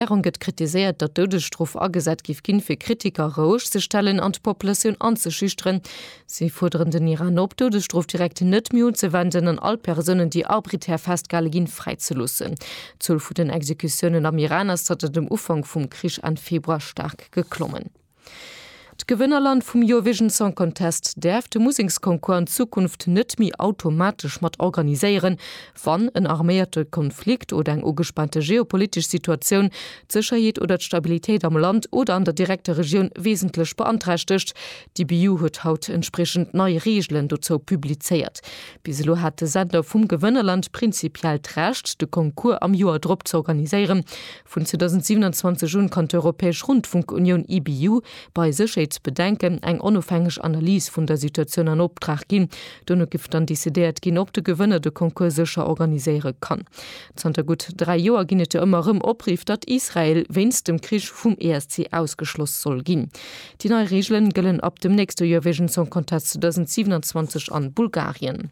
D'Regierung gëtt kritiséiert, datt d'Doudesstrof agesat géif ginn, fir Kritiker roueg ze stellen an d'Populatioun anzeschüchteren. Si fuerderen den Iran op, d'Doudesstrof direkt net méi unzewenden an all Persounen, déi arbiträr festgehale ginn, fräizeloossen. D'Zuel vun den Exekutiounen am Iran ass zanter dem Ufank vum Krich Enn Februar staark geklommen. D'Gewënnerland vum Eurovision Song Contest däerf de Museksconcours an Zukunft net méi automatesch mat organiséieren, wann en arméierte Konflikt oder eng ugespaante geopolitesch Situatioun d'Sécherheet oder d'Stabilitéit am Land oder an der direkter Regioun wesentlech beanträchtegt. D'EBU huet haut entspriechend nei Reegelen dozou publizéiert. Bis elo hat de Sender vum Gewënnerland prinzipiell d'Recht, de Concours am Joer drop z'organiséieren, Vun 2027 un kann d'Europäesch Rundfunkunioun, EBU, bei Sécherheetsbedenken eng onofhängeg Analys vun der Situatioun an Optrag ginn. Dono giff dann decidéiert ginn, ob de Gewënner de Concours sécher organiséiere kann. Zanter gutt dräi Joer ginn et jo ëmmer erëm Opriff, datt Israel wéinst dem Krich vum ESC ausgeschloss soll ginn. Déi nei Reegelen gëllen ab dem nächste Eurovision Song Contest 2027 an Bulgarien.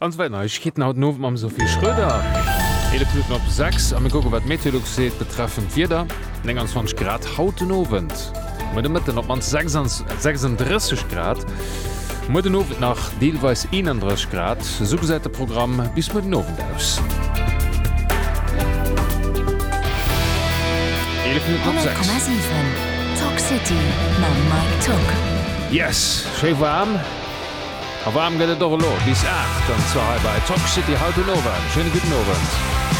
An zwar Neiegkeeten haut den Owend mam Sophie Schröder. 11 Minutten op 6 a mir kucken, wat d'Meteolux seet betreffend d'Wieder. 29 Grad haut den Owend, muer de Mëtten op d'mannst 36 Grad, muer den Owend nach deelweis 31 Grad. Esou gesäit de Programm bis muer den Owend aus. 11 Minutten op 6. 100,7 Talk City mam Mike Togg. Yes, schéi waarm. A waarm gëtt et och elo, bis 8, an zwar hei bei Tock City haut den Owend. Schéine gudden Owend.